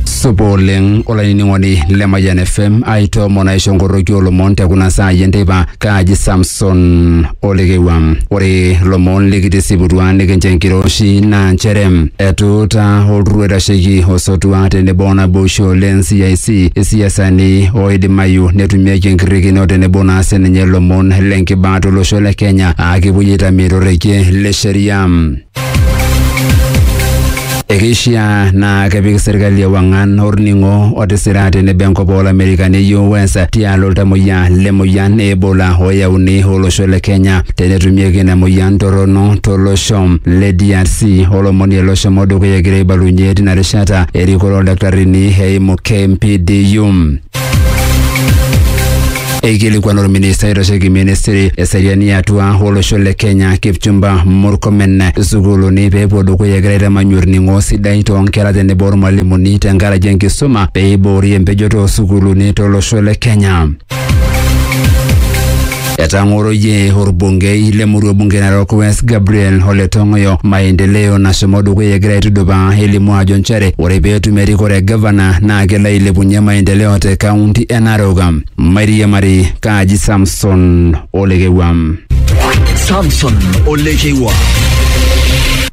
supa oleng olainining'oni le Mayian FM aitoomon aisho nkoroki olomon te kuna saai enteipa kaaji Samson Olekewua. Ore lomon likitisiputua nikincho enkiroshi naa nchere etuuta olturrur oitasheki osotua tenebo onaboisho le NCIC isiasani oidimayu netumieki enkirrikino tenebo naa sininye lomon le nkibaa tolosho le Kenya aa kepuoi aitamie torrekie le sheria. Ekeishiaa naa kepik serkali ewang'an orning'o otisira tenebo enkop oolamerikani e US tialo oltamoyia le moyian e Ebola oyauni olosho le Kenya tenetumieki ina moyian torrono tolosho le DRC. Olomoni ele oshomo dukuya egira aibalunyie tina rishata erikore oldaktarini eimu KMPDU. Eikilikuan orministai oitasheki ministry eseriani atua olosho le Kenya Kipchumba Murkomen sukuuluni peepuo dukuya egira aitamanyu orning'o sidai toonkera tenebo ormalimuni tenkaraki enkisuma peiboori empejoto oosukuuluni tolosho le Kenya. Etang'oroyie orbungei le murua bunge Narok West Gabriel Ole Tong'oyo maendeleo nashomo dukuya egira aitudupaa elimu ajo nchere ore pee etum erikore e gavana naa kelo ailepunye maendeleo te kaunti e Narok. Mairiamari Kaji Samson Olekewam. Samson Olekeiwa.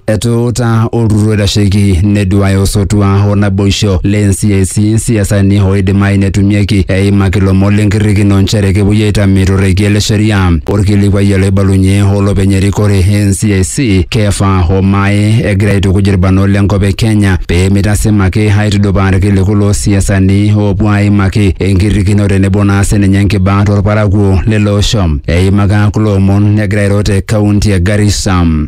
Etuuta olturrur oitasheki neduaya osotua o naboisho le NCIC isiasani oidimayu netumieki eimaki lomon le nkirrikino nchere kepuoi aitame to rrekie le sheria. Olkilikuai ele oibalunye olopeny erikore e NCIC Kefa Omae egira aitukuj ilbarnot le nkop e Kenya pee meitasima ake aitudupaa ilkiliku loo siasani oopuo aimaki enkirrikino tenebo naa sininye nkiba to lparakuo lele osho. Eimaka kulo omon egira airo te kaunti e Garissa.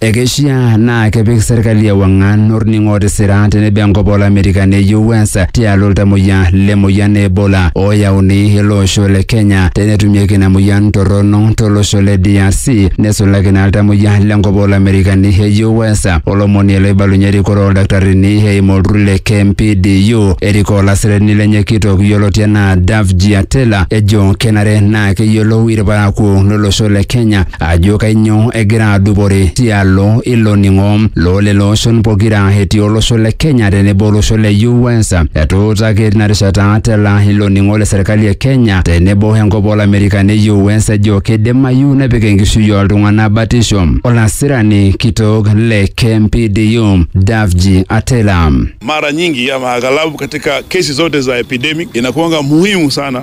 Ekeishiaa naa kepik serkali ewang'an orning'o tisira tenebo enkop olamerika neyieu Wens tialo iltamoyia le moyian e Ebola ooyauni ele osho le Kenya tenetumieki ina moyian torrono tolosho le DRC nesulaki naa iltamoyia le nkop oolamerikani eyieu Wens olomoni ele oibalunye erikore oldaktarini eimu olturrur le KMPDU erikoo olasirani lenye kitok yioloti enaa Davji Atela ejo kenare naa keyiolou irparakuo lolosho le Kenya ajo kainyoo egira adupore tialo ilo ning'o loo lelo oshon pokira etii olosho le Kenya tenebo olosho le US. Etuutaki tina rishata tela ilo ning'o le serkali e Kenya tenebo enkop olamerikani e US ejo keidimayu nepik enkishui ooltung'ana batisho olasirani kitok le KMPDU Davji Atela. Mara nyingi ama aghalabu katika kesi zote za epidemic inakuanga muhimu sana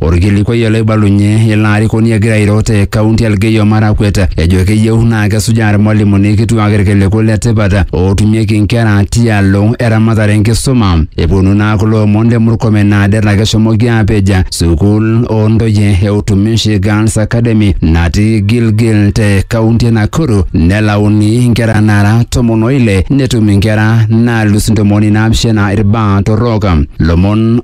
Orkilikuai ele oibalunye ilo arikoni egira airo te kaunti e Elgeyo Marakwet ejo keyieu naa kesujaa irmalimuni kituak irkiliku le tipat ootumieki nkera tialo eramatare enkisuma. Eponu naa kulo omon le Murkomen naa det ake eshomoki aapej sukuul oo ntoyie e Utumishi Girls Academy natii Gilgil te kaunti e Nakuru nelauni nkera naara tomon o ile netum nkera naalus ntomoni naapishana irbaa torrok. Lomon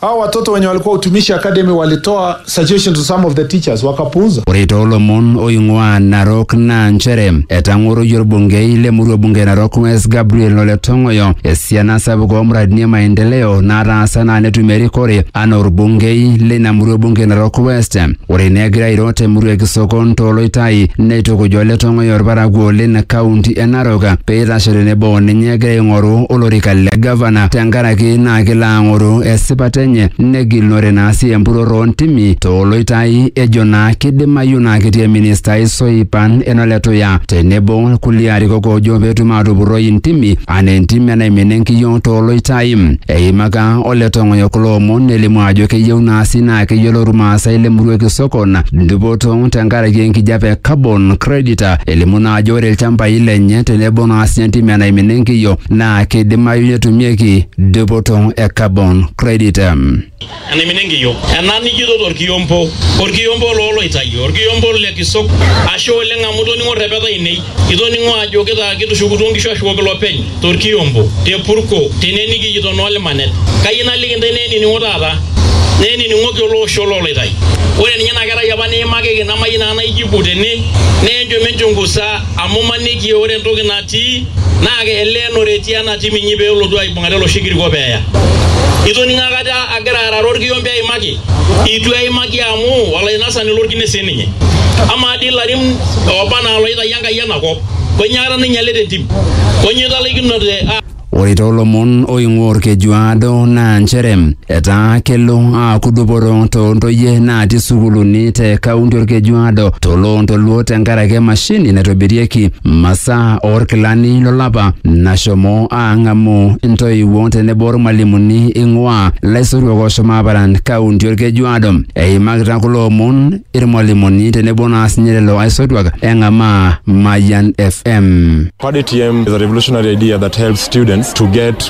Hao watoto wenye walikuwa utumishi academy walitoa suggestion to some of the teachers wakapuuza. Ore toolomon oing'uaa Narok naa nchere etang'oroyie orbungei le murua bunge e Narok West Gabriel Ole Tong'oyo esiana sapuk oo muradini e maendeleo naataasa naa netum erikore anaa orbungei leina murua bunge e Narok West. Ore naa egira airo te murua e Kisokon to Loitai neitukuja ole Tong'oyo olparakuo olin kaunti e Narok pee eitasho tenebo o ninye egira aing'oru olorika le gavana tenkaraki naa kelo aang'oru esipata enye negilunore naa sii empurrorro oo ntimi to Loitai ejo naa keidimayu naa ketii ilministai soipan eno Letuya tenebo kulie arikok oojo pee etum aatupurroi intimi anaa entim enaimina enkiyio to Loitai. Eimaka Ole Tong'oyo kulo omon nelimu ajo keyieu naa sii naa keyiolo Ilmaasai le Murua Kisokon dupoto tenkaraki enkijape e carbon credit. Elimu naa ajo ore ilchambai lenye tenebo naa sii entim e naimina enkiyo naa keidimayu netumieki dupoto e carbon credit. enaimina enkiyo ena nijito torkiompo orkiompo looloitayu orkiompo le kisok ashe oleng amu itoning'o rrepeta ainei itoning'o ajo kitaa kitushukutuo nkishu ashukoki lopeny torkiompo te purko tene nikijito noo limanet kayieu naliki intae naa enining'o taata naa enining'oki ele osho looloitai ore ninye ina kerai apa niimakiki namayieu naa naijibu tene naa enchom enchungusa amu imaniki ore entoki natii naa keleenore etii ena tim inyi pee elotu aibung'are oloshi kiriko pee eya. Itoning'o akata agira arare olkiombe aimaki? Eitu eimaki amu olainasani lolkine sii ninye. Amaa dii ilarin ooba anaa looitayio Enkai ena kop, kainyoo aikata nainyalita entim? Kainyoo italaikinote? Ore too lomon oing'ua Olkejuado naa nchere Etaa kelo aaku dupoto too ntoyie naati sukuuluni te kaunti Orkejuado to Loontoluo tenkaraki emashini naitobirieki masaa oorkilani lolapa nashomo aang'amu intoiwuo tenebo ormalimuni ing'uaa laisotuak ooshomo aaparan kaunti Orkejuado. Eimakita kulo omon irmalimuni tenebo naa sinye lelo aisotuak eng'amaa Mayian FM. Paddy TM is a revolutionary idea that helps students to get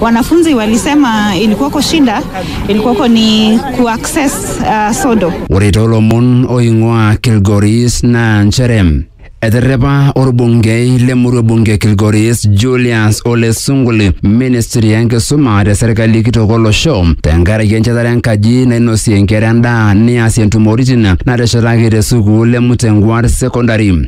Wanafunzi walisema ilikuwako shida, ilikuwako ni kuaccess uh, sodo. Ore toolomon oing'ua Kilgoris naa nchere eterrepa orbungei lemurua bunge Kilgoris Julius Ole Sunguli ministri enkisuma te serkali kitok olosho tenkaraki enchetare enkaji nainosie nkera endaa neasie ntumoritin nateshetaki te sukuul e Mutengwar Secondary.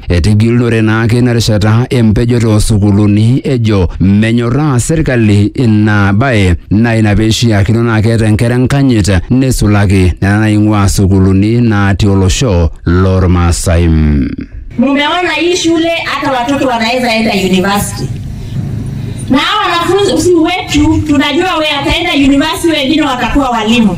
Etigilunore naake ina rishata empejoto oo sukuuluni ejo menyorraa serkali ina bae naa ina pee eishiakino naa keeta inkera enkanyit neisulaki nena naing'uaa sukuuluni naati olosho loormaasai. Mumeona hii shule hata watoto wanaweza enda university. Na wanafunzi wetu tunajua we ataenda university wengine watakuwa walimu.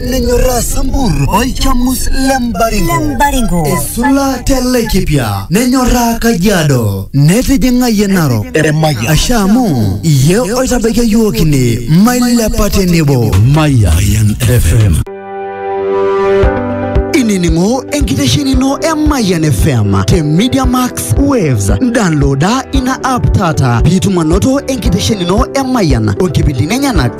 nenyorraa sambur olchamus le mbaringo Lembaringo. esula te laikipia nenyorraa kajiado netijing'ayie narok asha amu iye oitabaikia yiok ine mailepa tenebo Mayan FM. inining'o enkitesheni ino e Mayan FM te Media Max Waves. Downloada ina app taata piitum anoto enkitesheni ino e Mayan o nkipindini enyenak